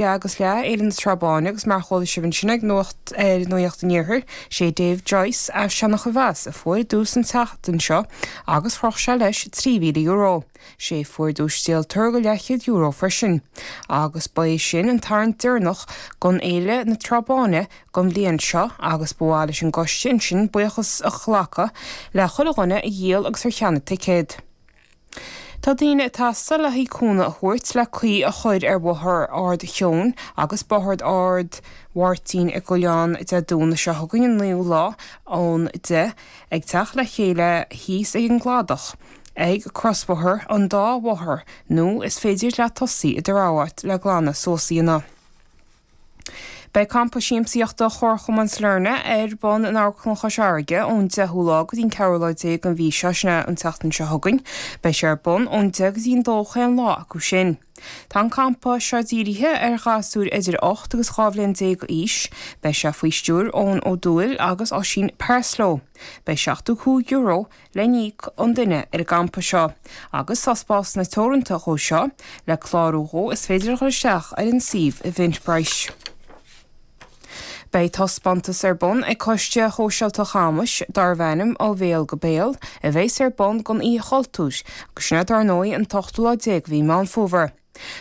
Leath agus leath, Fhéile na Trá Báine agus mar a chuala sibh ansin ag Nuacht ar Nuaíocht an Iarthair, is é Dave Joyce as Seanachomheas a fuair duais an tseachtain seo agus chroch sé leis €3,000. Is é fuair duais díoltóir go leathchéad euro freisin. Agus ba é sin an tarraingt deireanach gon Fhéile na Trá Báine gon bhliain seo agus ba mhaith leis an gcoiste ansin buíochas a ghlacadh le chuile dhuine a dhíol agus ar cheannaigh ticéad. Tá daoine ag teastáil le haghaidh cúnamh a thabhairt le caoi a chuir ar Bhóthar Ard Sheoin agus Bóthar Ard Mháirtín i gCuilleán Dé Domhnaigh seo chugainn an naoú lá ón deich ag teacht le chéile thíos ag an gCladach ag crosbhóthar an dá bhóthar nó is féidir leat tosaí i do rogha áit le glanadh suas a dhéanamh Beidh Campa Siamsaíochta Chomharchumann Sailearna ar bun in Amharclann Chois Fharraige ón 10ú lá go dtí an 4ú lá déag an mhí seo, sin an tseachtain seo chugainn. Beidh sé ar bun ón deich go dtí an dó chaon lá acu sin. Tá an campa seo dírithe ar ghasúir idir ocht agus dhá bhliain déag d'aois. Beidh sé faoi stiúir Eoin Ó Dubhghaill agus Oisín Parslow. Beidh seachtó cúig euro le n-íoc an duine ar an gcampa seo agus tá spásanna teoranta dhó seo, le clárú dhó is féidir a dhul isteach ar an suíomh Eventbrite. Beidh taispeántas ar bun ag Coiste Shóisialta Chamuis darbh ainm 'Ó Bhéal go Béal' a bheas ar bun don Oíche Chultúir agus sin é dar ndóigh an t-ochtú lá déag de mhí Meán Fómhair.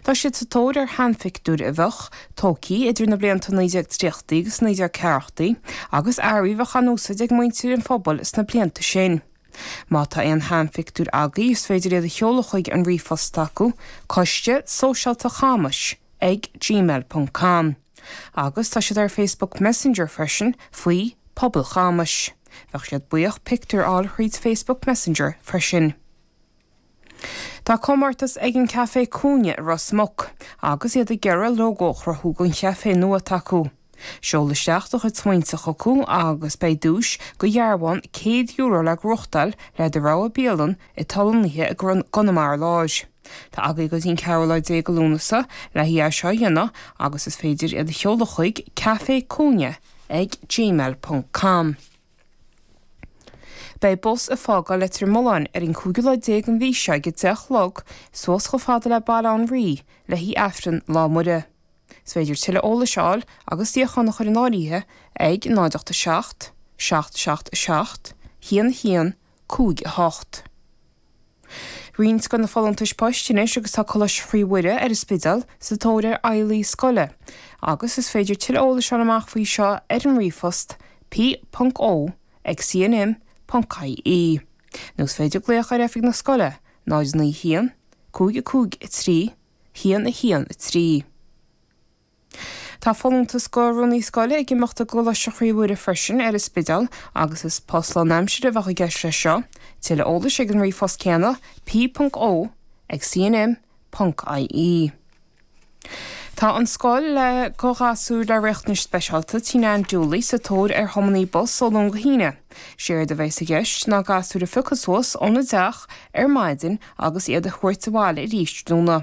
Tá siad sa tóir ar sheanphictiúir a bheadh tógtha idir na blianta 1930idí agus 1940idí, agus earraí a bheadh á n-úsáid ag muintir an phobail sna blianta sin. Má tá aon sheanphictiúir agaibh is féidir iad a sheoladh chuig an ríomhphost acu, coiste sóisialta chamais ag gmail ponc com, agus tá siad ar Facebook Messenger freisin faoi Pobal Chamais. Bheadh siad buíoch pictiúir a fháil thríd Facebook Messenger freisin. Tá comórtas ag an Caifé Cúinne i Ros Muc agus iad ag iarraidh lógó a chruthú don chaifé nua s'acu. Seol isteach do chuid smaointe chucu agus beidh duais go dhearbhán €100 le gnóthachtáil le do rogha bialann atá lonnaithe i gConamara Láir. Tá agaibh go dtí an 14ú lá de Lúnasa le haghaidh é seo a dhéanamh agus is féidir iad a sheoladh chuig, caifécúinne ag gmail ponc com. Beidh bus ag fágáil Leitir Mealláin ar an 5ú lá déag an mhí seo ag a deich a chlog suas chomh fada le Baile Átha an Rí le haghaidh Aifreann Lá Muire. Is féidir tuilleadh eolais a fháil agus suíochán a chur in áirithe ag, 087 777 1158. Roinnt de na folúntais poist anois agus tá Coláiste Chroí Mhuire ar an Spidéal sa tóir ar fheighlí scoile agus is féidir tuilleadh eolais fháil amach faoi seo ar an ríomhphost p.o. ag cnm.ie nó is féidir glaoch ar oifig na scoile 091 553 113. Tá folúntas go rúnaí scoile ag imeacht i gColáiste Chroí Mhuire freisin ar an Spidéal agus is post lán-aimsire a bheadh i gceist leis seo. Tuilleadh eolais ag an ríomhphost céanna, p.o ag cnm.ie. Tá an scoil le go ghasúir le riachtanais speisialta Tigh Nan Dooley sa tóir ar thiománaí bus ó Luan go hAoine. Séard a bheas i gceist ná gasúir a phiocadh suas óna dteach ar maidin agus iad a thabhairt abhaile arís tráthnóna.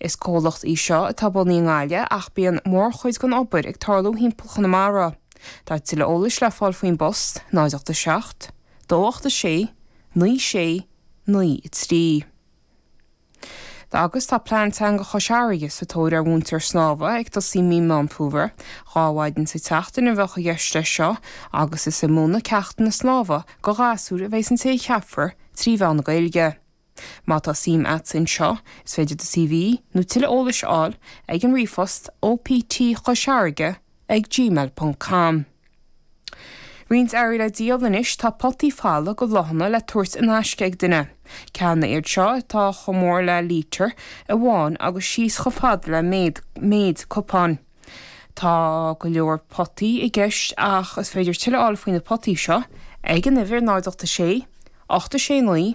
Is comhlacht í seo atá bunaithe i nGaillimh ach bíonn mórchuid den obair ag tarlú thimpeall Chonamara. Tá tuilleadh eolais le fáil faoin bpost, 087 286 9693. Agus tá Plean Teanga Chois Fharraige sa tóir ar mhúinteoir snámha ag tosaí Mí Meán Fómhair. Dhá mhaidin sa tseachtain a bheadh i gceist leis seo agus is ag múineadh ceachtanna snámha do ghasúir a bheas an té a cheapfar trí mheán na Gaeilge. Má tá suim a't in seo, is féidir do CV, nó tuilleadh eolais a fháil ag an ríomhphost optchoisfharraige ag gmail ponc com. Roinnt earraí le díol anois, tá potaí folamh go bhláthanna le tabhairt in aisce ag duine. Ceanna iad seo atá chomh mór le lítear amháin agus síos chomh fada le méid cupáin. Tá go leor potaí i gceist ach is féidir tuilleadh a fháil faoi na potaí seo ag an uimhir 086 869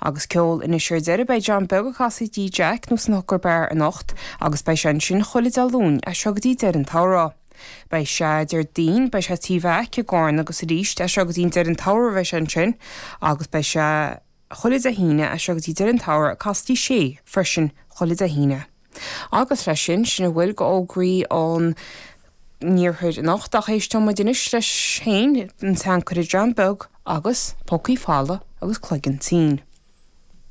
Agus ceol anois ar deireadh, beidh John Beag ag casadh Tigh Jack nó san Hooker Bar anocht agus beidh sé ansin chuile Dé Luain as seo go dtí deireadh an tsamhraidh. Beidh sé, Déardaoin, beidh sé Tigh Mheaic i gCarna agus arís as seo go dtí deireadh an tsamhraidh a bheas sé ansin agus beidh sé chuile Dé hAoine as seo go dtí deireadh an tsamhraidh ag casadh Tigh Sé freisin chuile Dé hAoine. Agus leis sin, sin a bhfuil go fhógraí an iarthair anocht, ach éisteoidh muid anois leis féin, an tseanchara John Beag agus pócaí folamh agus cloigeann tinn.